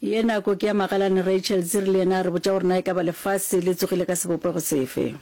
Ye nako ke ya magalane Rachel Dziri le yena a re botša gore na e ka ba lefase le tsogile ka sebopego sefe.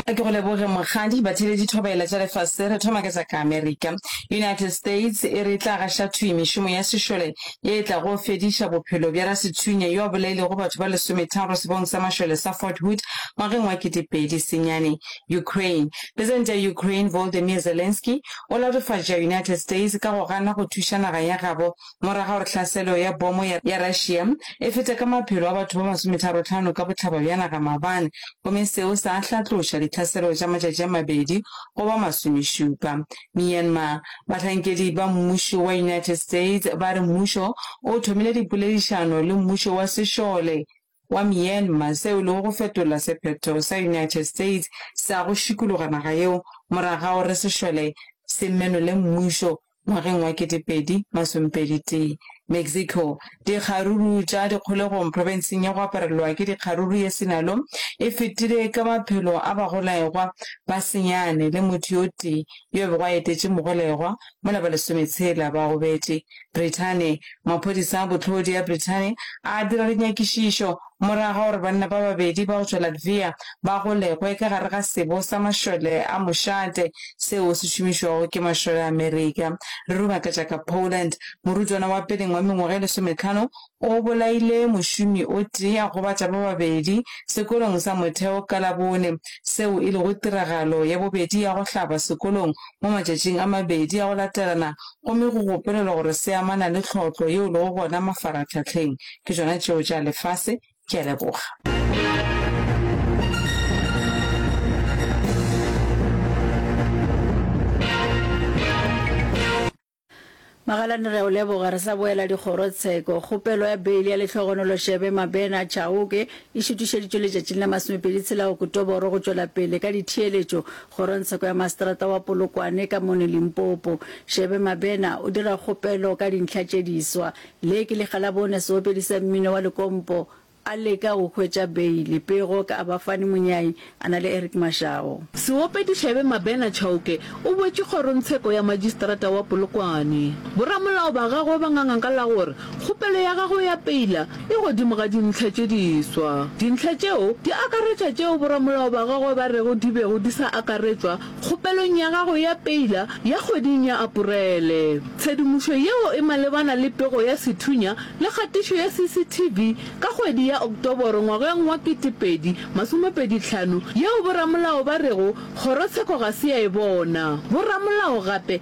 Ke go leboge mokgadi. Batheeletši thobaela tša lefase re thoma ka tša ka Amerika. United States e re e tla gaša thwi mešomo ya sešole ye e tlago fediša bophelo bja rasethunya yo a bolailego batho ba lesometharo sebong sa mašole sa Fort Hood ngwageng wa ketepedi senyane. Ukraine. Presidente ya Ukraine Volodymyr Zelensky o latofatša United States ka go gana go thuša naga ya gabo morago ga gore tlhaselo ya bomo ya Russia e fete ka maphelo a batho ba masometharotlhano ka bohlaba bja naga maabane gomme seo sa hlatloša ditlhaselo tša matšatši a mabedi go ba masomešupa Myanmar, bahlankedi ba mmušo wa United States ba re mmušo o thomile dipoledišano le mmušo wa sešole wa Myanmar seo e lego go fetola sephetho sa United States sa go šikologa naga yeo morago ga gore sešole se menole mmušo ngwageng wa 2021. Mexico, dikgaruru tša dikgolegong profenseng ya go aparelwa ke dikgaruru ya Sinaloa e fetile ka maphelo a bagolegwa ba senyane le motho yo tee yo a bego a etetše mogolegwa mola ba lesometshela ba gobetše. Brithani, Maphodisa a bohlodi a Brithani a dira dinyakišišo Morago ga gore banna ba babedi ba go tšwa Latvia ba golegwe ka gare ga sebo sa mašole a mošate seo se šomišwago ke mašole a Amerika, re re o makatša ka Poland, morutwana wa peleng wa mengwaga e lesometlhano o bolaile mošomi o tee a gobatša ba babedi sekolong sa motheo ka Labone, seo e lego tiragalo ya bobedi ya go hlaba sekolong mo matšatšing a mabedi a go latelana gomme go gopolelwa gore se amana le tlhohlo yeo lego gona mafaratlhahleng ke tšona tšeo tša lefase ke a leboga magalane re o leboga re sa boela dikgorotsheko kgopelo ya beile ya letlhogonoloshebe mabena chaoke e šutišeditšwe letšatšing la masomepedi tshela okotoboro go tšwela pele ka ditheeletšo kgorotsheko ya maseterata wa polokwane ka mone limpopo shebe mabena o dira kgopelo ka dintlha tše diswa Le ke lekga la bone seopedi sa mmino wa lekompo a leka go hwetša beile pego ka Abafani Monyai a na le Eric Mashao. Seopedi Xaebe Mabena Chauke o boetše kgorongtsheko ya majistrata wa Polokwane. Boramolao ba gagwe ba nganga ka la gore kgopelo ya gagwe ya peila e godimo ga dintlha tše diswa. Dintlha tšeo di akaretša tšeo boramolao ba gagwe ba rego di bego di sa akaretšwa kgopelong ya gago ya peila ya kgweding ya Aporele. Tshedimošo yeo e malebana le pego ya sethunya le kgatišo ya CCTV ka kgwedi ya Oktoboro ngwageng wa 2025 yeo boramolao ba rego kgorotsheko ga se ya e bona. Boramolao gape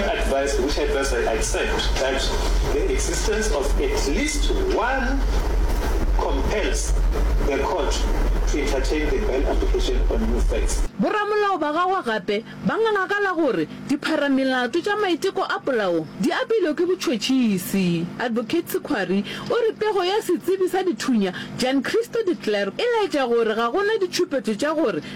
Advice, which advice I accept, that the existence of at least one compels the court to entertain the bail application on new facts. Boramolao ba gagwe gape ba nganga ka la gore dipharamelato tša maiteko a polao di apeilwe ke botšhotšhisi. Advocate Sekhwari o re pego ya setsebi sa dithunya Giancristo de Klerk e laetša gore ga go na ditšhupetšo tša gore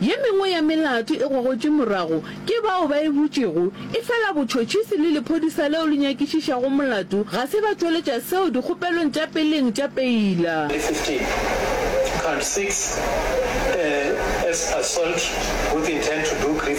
Ye mengwe ya melato e gogotšwe morago ke bao ba e butšego, efela botšhotšhisi le lephodisa leo le nyakišišago molato ga se ba tšweletša seo dikgopelong tša peleng tša peila. le 15, Count six, e, as assault with intent to do grievous.